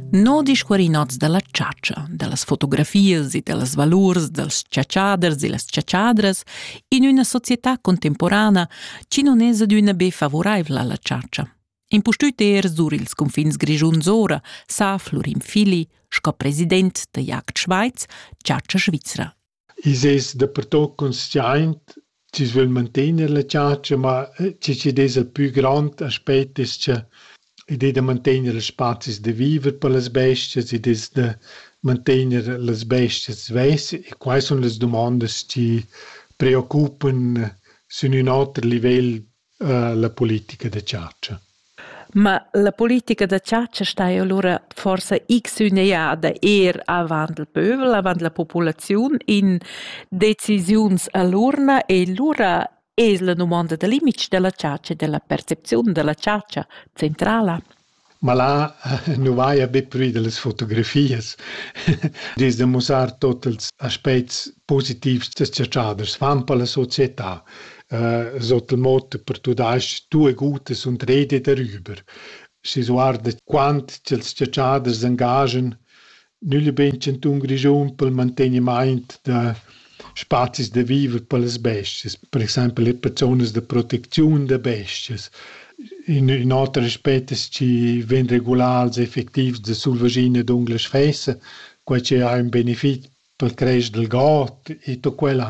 No discuorinots da la chatscha, da las fotografias e da las valurs dals chatschaders e las chatschadras in üna società contemporana chi non es adüna be favuraivla alla chatscha. Impustüt er sur ils confins grischuns ora sa Florin Fili sco president da Jagd Schweiz chatscha svizra. I's es dapertuot consciaint chi's vögl mantegner la chatscha, ma chi chi'd es il pü grand aspet es cha id es da mantegner ils spazis da viver per las bestias, id es da mantegner las bestias svess e quai sun las dumandas chi preoccupan sün ün oter livel la politica da chatscha. Ma la politica da chatscha sta allura forsa x üneada eir avant il pövel, avant la populaziun in decisiuns a l'urna e lura es la dumonda da limits da la chatscha e da la percepziun da la chatscha centrala. Ma là nu vaja be prü da las fotografias. Dis da mussar tuot ils aspets positivs da s-chatschaders fan per la società. Sot il motto per tumasch tue gute sunt rede darüber. Schi s'guarda quant cha'ls s-chatschaders s'angaschan Nügl e bein chantun Grischun pel mantegnimaint da spazis da viver per las bestias, per exaimpel eir per zonas da protecziun da bestias. In ün oter aspet es chi vain regulars e effectivs da sulvaschina e d'unglas fessa, quai chi ha ün benefit pel cresch dal god e tut quella.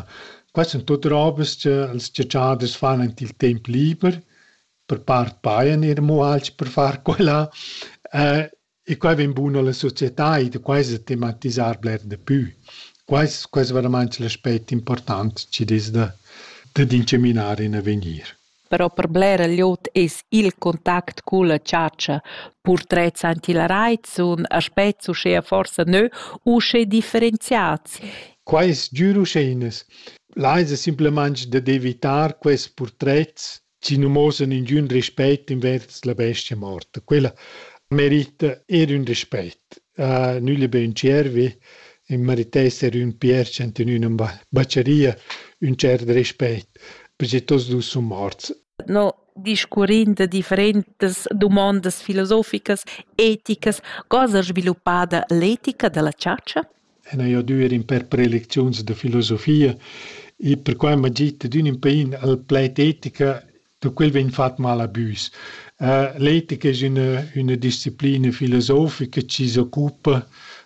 Quai sun tuot robas cha ils chatschaders fan ant il temp liber, per part pajan eir amo alch per far quella. E quai vegn bun alla società e da quai sa tematisar bler da pü. Quais quais veramaint il aspect important chi'd es da dad incaminar in avegnir. Però per blera glieud es il contact culla chatscha, purtrets antilarait sun aspets uschea forsa nö usche differenziats. Quai es giür uschè inas. Là esa simplamaing dad evitar quels purtrets si nu mosan ingün rispett invers la bestia morta. Quella merita eir ün rispett. Nügli be ün tschiervi, ün meritesser ün pierch ant in üna bacheria ün tschert rispett, perche tots dus sun morts. No discurrind de differentas dumondas filosoficas, eticas, cosa sviluppada l'etica della chatscha? en hai odü eir ün pêr prelecziuns da filosofia e perquai m'ha git adüna ün pain al plaid etica, da quel vegn fat mal a büs. L'etica es üna üna disciplina filosofica chi s'occupa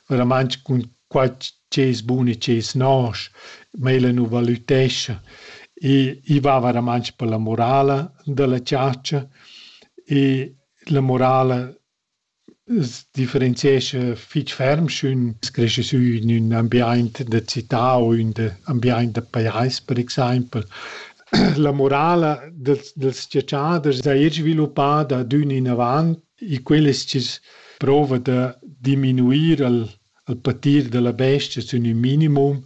veramainch cun qua chi es bun e chi es nosch, ma ella nu valütescha. I i va veramainch per la morala da la chatscha e la morala differenziescha fich ferm sch'ün creisce sü in ün ambiaint da cità u ün ambiaint da pajais per exaimpel. La morala dals dals giatschaders saja sviluppada d'ün inavant e quel es chi's prouva da diminuir al al patir da la bestia sün ün minimum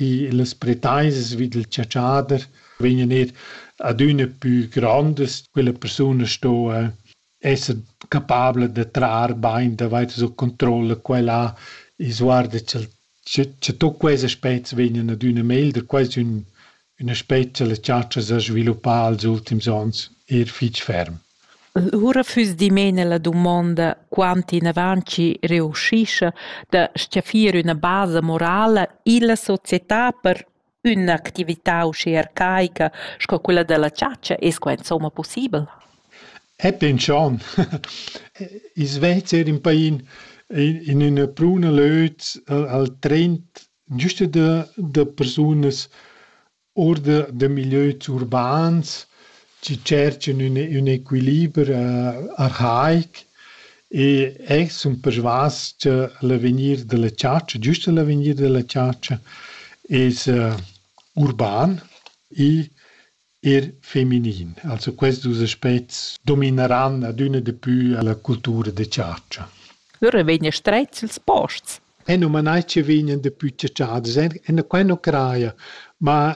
e las pretaisas vi dal giatschader vegnan eir adüna pü grondas, quella persuna sto esser capabla da trar bain davart sut controlla quella e sguarda cha'l cha cha tuot quels aspets vegnan adüna meglder, quasi ün ün aspet cha la chatscha s'ha sviluppà als ultims ons eir fich ferm. Lura füss dimena la dumonda quant inavant chi reuschischa da s-chaffir üna basa morala illa società per Ün'actività uschè arcaica sco quella da la chatscha es qua insomma pussibel? Epi ün tschon. I Svezia in pain in üna pruna löt al trend güsta da da persunas our da da milieus urbans chi tscherchan ün ün equiliber arhaic e eh sun persvas cha l'avegnir da la chatscha, giüst l'avegnir da la chatscha es urban e eir feminin. Also questi duos aspets domineran adüna di pü la cultura da chatscha. Lura vegnan strets ils posts. E nu ma nai chi vegnan dapü chatschadas, e qua nu craja, ma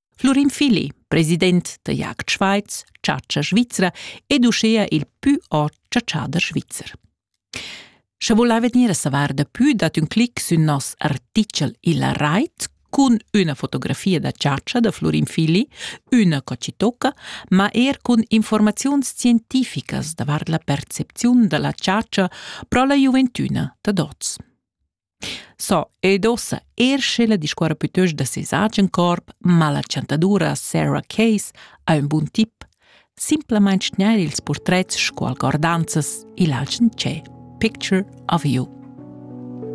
Flurin Fili, president da Jagd Schweiz, chatscha svizra ed uschea il pü ot chatschader svizzer. Sche volai vegnir a savar da pü dat ün clic sün nos artichel illa rait cun üna fotografia da chatscha da Flurin Fili, üna cocitocca, ma er cun informaziuns scientificas davart la percepziun da la chatscha pro la giuventüna da dots. So, ed ossa eir sch'ella discuorra pütöst da seis agen corp, ma la chantadura Sarah Case ha ün bun tip, simplamaing tgnair ils purtrets scu algordanzas i'l agen tschè Picture of You.